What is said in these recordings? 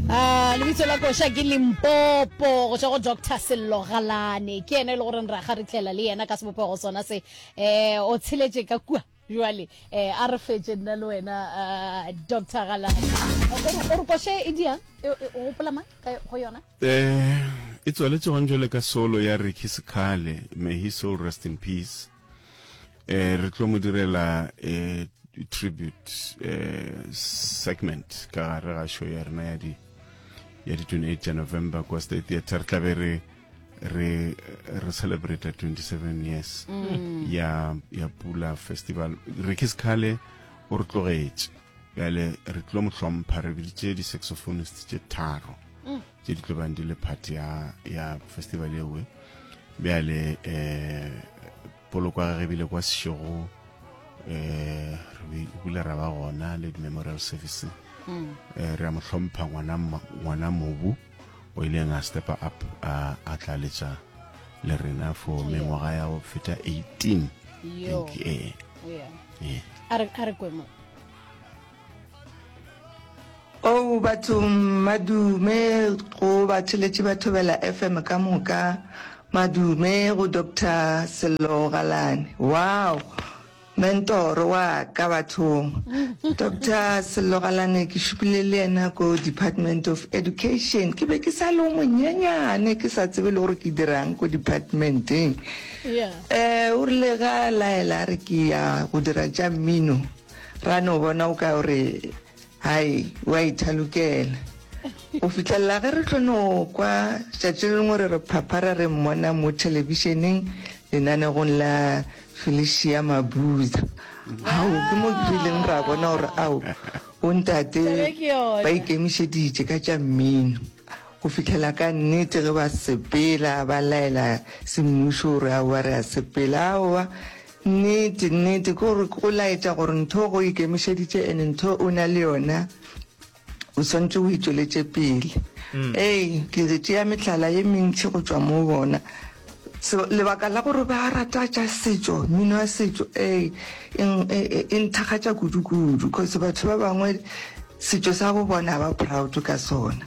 Ah, lebitso la koša ke limpopo go tswa go doctor sello galane ke ene e le goreng ra ga re tlela le yena ka sebopego sona se um o tsheletse ka kua jale um a re fetse nna le wena ah, doctor galane O re- o re koše e diang E- e- o gopola mang ka yo- go yona Eh, e tswaletše gone jwale ka solo ya Ricky Sekhale, may his soul rest in peace. eh re tlo mo direla eh tribute eh segment ka gare ga show ya rena ya di ya di 28 ya november kwa state theatre re tlabe re re re celebrate 27 years mm. ya ya pula festival re ke sekhale o re tlogetše bjale re tlo mo hlompha re biditše di-saxophonist tše tharo tše di tlobang di le part ya ya festival ewe bjale eh poloko ga re bile kwa sešego eh re bile ra ba gona le memorial service mm. eh re a mo hlompha ngwana ngwana mobu o ile nga step up a a tlaletsa le rena for mengwaga ya go feta 18 thank you eh yeah. yeah. are are kwemo Ou batho madume go batheletši ba Thobela FM ka moka, madume go Doctor Sello Galane. Wow! Mentoro wa ka bathong. Doctor Sello Galane ke šupile le yena ko Department of Education. Ke be ke sa le o monyenyane ke sa tsebe le gore ke dirang ko departmenteng. Yeah. Eh o rile ga laela a re ke ya go dira tša mmino. Ra no bona o ka o re, Hai, o a ithalokela. Go fihlelela ge re tlo no kwa tšatši le lengwe re re phaphara re mmona mo thelebišeneng lenanegong la Felicia Mabuza. Ao, ke mo ke rileng ra bona gore ao bontate ba ikemišeditše ka tša mmino. Go fihlela ka nnete ge ba sepela ba laela semmušo gore aowa re a sepela, aowa Nnete, nnete, ke gore o laetša gore ntho ge o ikemišeditše and ntho o na le yona, o swanetše o e tšweletše pele. Ee, ke re tšea mehlala ye mentši go tšwa moo bona. So, lebaka la gore ba rata tša setšo, mmino wa setšo, ee, e nthakgatša kudu-kudu, cause batho ba bangwe setšo sa bo bona ga ba proud ka sona.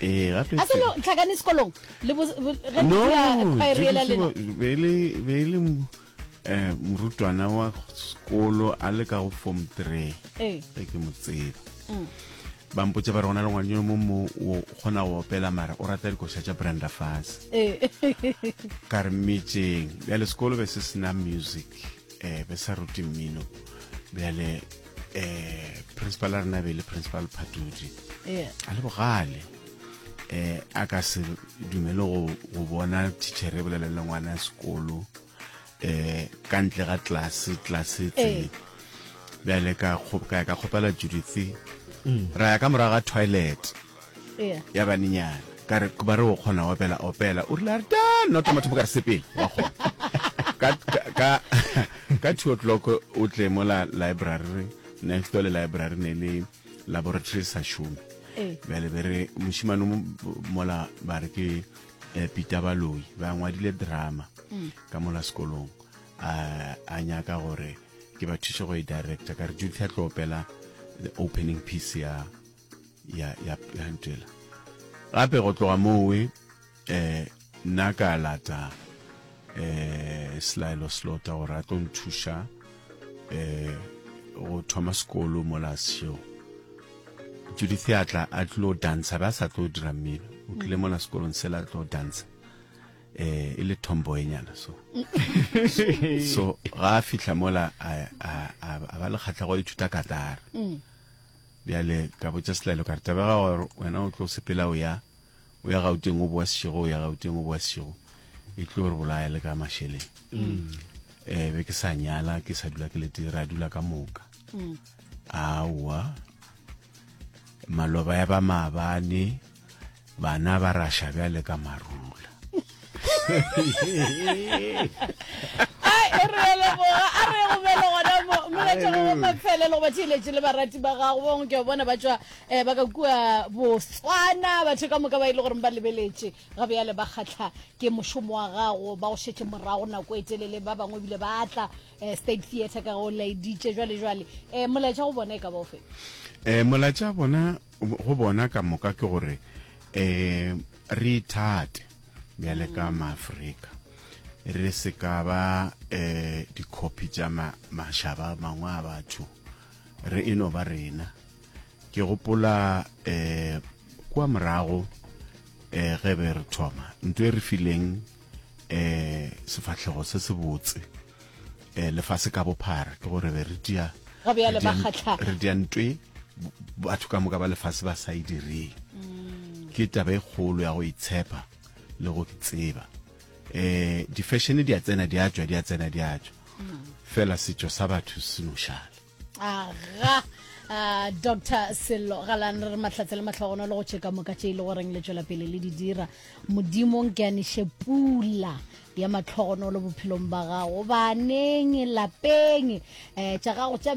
ee ga se no tlhakane sekolong le bo ge no khoirela le be le be le eh morutwana wa sekolo a le ka go form 3 ee ke mo tseba mm. ba mpotse ba re gona le ngwane yo mo mo o kgona go opela mara o rata dikoša tša branda fase ee. ka re mmetseng bjale sekolo be se sena music eh, be sa rute mmino bjale eh, principal a rena be le principal phatudi yeah. a le bogale eh, a ka se dumele go, go bona tichere e bolelele ngwana sekolo eh, ka ntle ga tlase tlase tse eh. bjale ka ka kgopela judith mm. ra ya ka morago ga toilet Yeah. ya banenyana ka re ba re o kgona go opela opela o rile a re ta nna o tla mathomo ka re sepele wa kgona ka, ka, ka, ka two o'clock o tle mo la library next door le library ne le laboratory sa šome Ee. bjale be re mošimane o mo- mola ba re ke eh, peter baloi ba ngwadile drama ka mola sekolong a a nyaka gore ke ba thuše go e director ka re judith a tlo opela the opening piece ya ya ya ya ntela gape go tloga moo we eh nna ka lata eh selaelo slota gore a tlo nthuša eh go thoma sekolo mo la seo Judith a tla a tlo dansa ba sa tlo dira mmino o tlile mo la sekolong se la tlo dansa eh e le tomboyenyana so so ga a fihla mola a a a ba le kgatlha go ithuta katara mm. Bjale ka botša Selaelo ka re, Tabega gore wena o tlo sepela o ya, o ya Gauteng o boa sešego, o ya Gauteng o boa sešego, e tlo re bolaya le ka mašeleng. Mm. Eh, be ke sa nyala, ke sa dula ke lete, ra dula ka moka. Mm. Aowa, maloba ya ba maabane, bana ba rasha bjale ka marula mafelelo ba theeletse le barati ba gago bangwe ke bona ba tswa um ba ka kua botswana batho ka moka ba e le goreng ba lebeletse ga bjale ba kgatlha ke mošomo wa gago ba go šetse morago nako e telele ba bangwe ebile ba tla um state theatre ka go laeditše jwale jwale um molaetša go bona e ka baofe um molaetša bona go bona ka moka ke gore um re ithate bjale ka maafrika re se ka ba um dikhopi tša mašaba mangwe a batho re e no ba rena ke gopola um kua morago um ge be re thoma nto e re fileng um sefahlego se se botse eh, lefase ka bophara ke gore be re dia re dia ntwe batho ka moka ba lefase ba sa e direng mm. ke taba e kgolo ya go itshepa le go tseba eh di-fashion di a tsena di a tswa di a tsena di a tswa mm. fela setšo sa batho se nošale aga uh, dr sello galane re matlhatse le matlhogono le go tšheka moka tše e le goreng le tšwela pele le di dira modimong ke aniše pula ya matlhogono le bophelong ba gago baneng lapeng um tša gago tša